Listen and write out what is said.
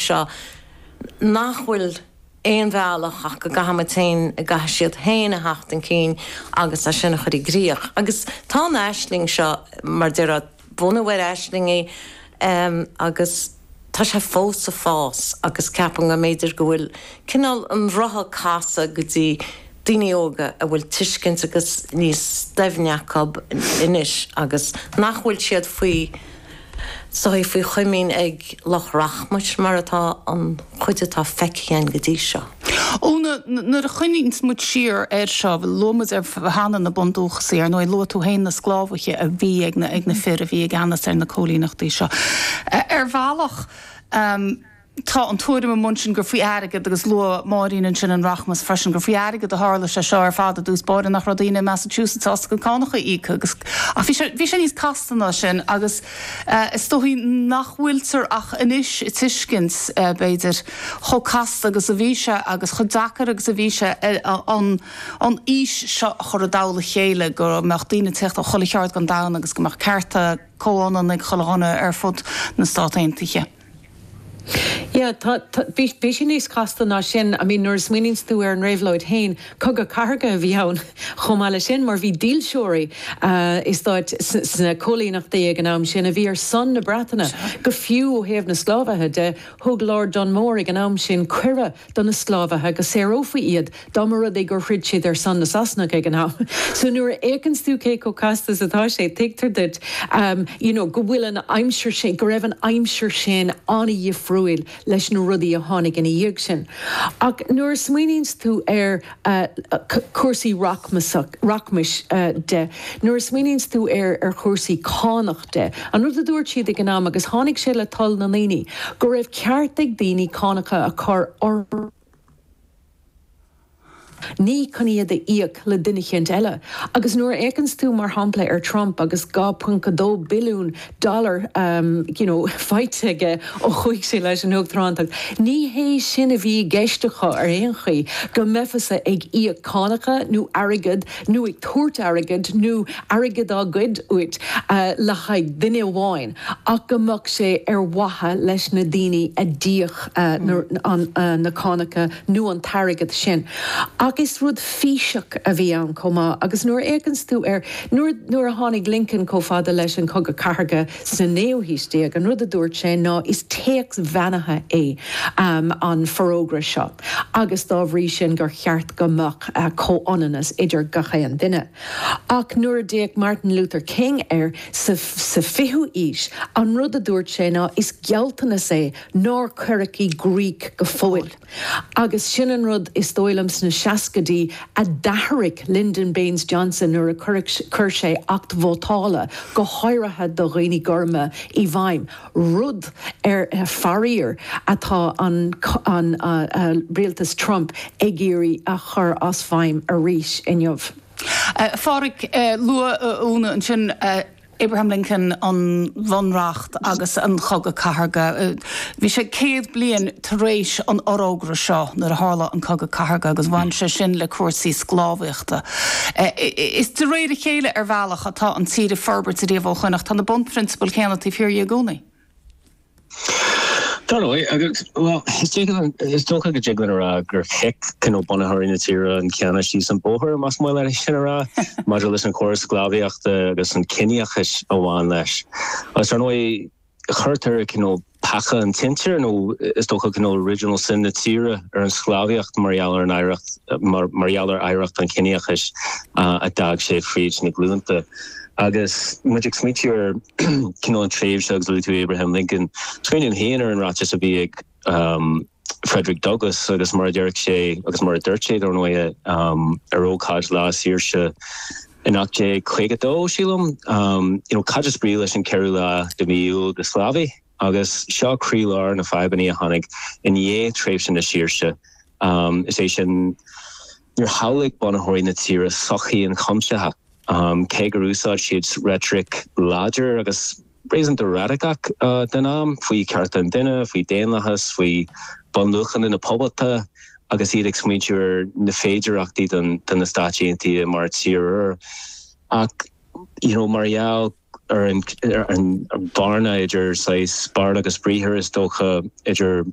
seo, nach bhfuil aon bhealach ach go gcaithfimid féin, go gcaithfidh siad féin a theacht chun cinn agus é sin a chur i gcrích. Agus tá an aisling seo, mar a déarfá, bunaithe ar aislingí agus tá sé fós ag fás agus ceapaim go mb'fhéidir go bhfuil cineál an rotha casadh go dtí, daoine óga a bhfuil tuiscint agus níos doimhne acu anois agus nach bhfuil siad faoi shotal, faoi chomaoin ag lucht rachmais mar atá an chuid atá feicthe againn go dtí seo. Úna, Nuair a chuimhníonns muid siar air seo, luaigh muid cheana na bundúchasaigh, ar ndóigh luaigh tú féin na sclábhaithe a bhí ag na fir a bhí i gceannas ar na cóilíneachtaí seo ar bhealach, Tá an tuairim amuigh ansin gur faoi airgead, agus luaigh Máirín ansin an rachmas freisin, gur faoi airgead a tharla sé seo ar fad i dtús báire, nach raibh daoine i Massachusetts sásta na cánacha a íoc agus, ach bhí sé, bhí sé níos casta ná sin agus is dóigh nach bhfuiltear ach anois ag tuiscint, b'fhéidir, chomh casta agus a bhí sé agus chomh deacair agus a bhí sé an, an fhís seo a chur i dtoll a chéile, go mbeadh daoine ag teacht ó chuile cheard den domhan agus go mbeadh cearta comhionann ag chuile dhuine ar fud na Stát Aontaithe. Yeah, tá, tá, bhí, bhí sé níos casta ná sin, I mean nuair a smaoiníonns tú ar an réabhlóid fhéin, cogadh cathartha a bhí ann chomh maith le sin mar bhí dílseoirí i stáit, sna cóilíneachtaí ag an am sin a bhí ar son na Breataine, go fiú ó thaobh na sclábhaithe de, thug Lord Dunmore ag an am sin cuireadh. do na sclábhaithe go saorófaí iad dá mba rud é gur throid siad ar son na Sasanach ag an am. So nuair a fhéachanns tú cé chomh casta is atá sé, tuigtear duit you know go bhfuil an aimsir sin, go raibh an aimsir sin an-dhifriúil leis na rudaí a tháinig ina dhiaidh sin. Ach nuair a smaoiníonns tú ar. a cúrsaí rachmais de, nuair a smaoiníonns tú ar chúrsaí cánach de. An rud a dúirt siad ag an am, agus tháinig sé le toil na ndaoine, go raibh ceart ag daoine cánacha a chur orthu, ní chun iad a íoc le duine eicínt eile, agus nuair a fhéachanns tú, mar shampla, ar Trump agus 2.2 billiún dollar you know faighte aige ó chuaigh sé leis an Uachtaránacht. Ní hé sin a bhí i gceist acu ar aon chaoi, go mbeifeá-sa ag íoc cánacha nó airgead nó ag tabhairt airgid nó airgead á ghoid uait le haghaidh duine amháin ach go mbeadh sé ar mhaithe leis na daoine a d'íoc na cánacha nó an t-airgead sin. Ach is rud físeach a bhí ann chomh maith agus nuair a fhéachanns tú ar Nuair a tháinig Lincoln chomh fada leis an Chogadh Cathartha sa naoú haois déag, an rud a dúirt sé ná is téacs beannaithe é an Forógra seo agus dá bhrí sin gur cheart go mbeadh comhionannas idir gach aon duine. Ach nuair a d'fhéach Martin Luther King air sa fichiú aois, an rud a dúirt sé ná is gealltanas é nár cuireadh i gcrích go fóill. Agus sin an rud, is dóigh liom, sna seascaidí a d'athraigh Lyndon Baines Johnson nuair a chuir sé acht vótála, go háirithe do dhaoine gorma, i bhfeidhm, rud, faraor, atá an rialtas Trump ag iarraidh a chur as feidhm arís inniu. A Phádraig, luaigh Úna ansin. Abraham Lincoln, an Bunreacht agus an Cogadh Cathartha Bhí sé céad bliain tar éis an fhorógra seo nuair a tharla an Cogadh Cathartha agus bhain sé sin le cúrsaí sclábhaíochta. Is de réir a chéile, ar bhealach, atá an tír ag forbairt riamh ó shoin ach tá na bunphrionsabail chéanna taobh thiar di i gcónaí. Dar ndóigh, agus, bhuel, is dócha, is dócha go dtig linn a rá gur chic, cineál, bunaitheoirí na tíre an canna síos an bóthar, más maith leat sin a rá, maidir leis an chóras sclábhaíochta agus an ciníochas a bhain leis. Agus, ar ndóigh, tugtar, cineál, peaca an tsinsir, nó is dócha, cineál, original sin na tíre ar an sclábhaíocht mar gheall ar an oidhreacht, mar, mar gheall ar oidhreacht an chiníochais a d'fhág sé fríd na glúnta. Agus muid ag smaointiú ar Cineál tréimhse agus luaigh tú Abraham Lincoln. Smaoiním féin ar an ráiteas a bhí ag Frederick Douglass agus mar a déarfadh sé, agus mar a dúirt sé, dar ndóighe, ar ócáid Lá Saoirse in 1852, sílim, you know, cad is brí leis an cheathrú lá de mhí Iúil do sclábhaí? Agus seo croílár na fadhbanna a tháinig i ndiaidh tréimhse na saoirse, is é sin níor shamhlaigh bunaitheoirí na tíre sochaí ionchuimsitheach, cé gur úsáid siad reitric láidir agus réasúnta radacach don am faoi chearta an duine, faoi daonlathas, faoi bhunluachanna na poblachta agus iad ag smaointiú ar na féidearthachtaí do na Stáit Aontaithe mar tír úr. Ach, you know, mar gheall ar an bhearna idir saghas beart agus briathar, is dócha, idir.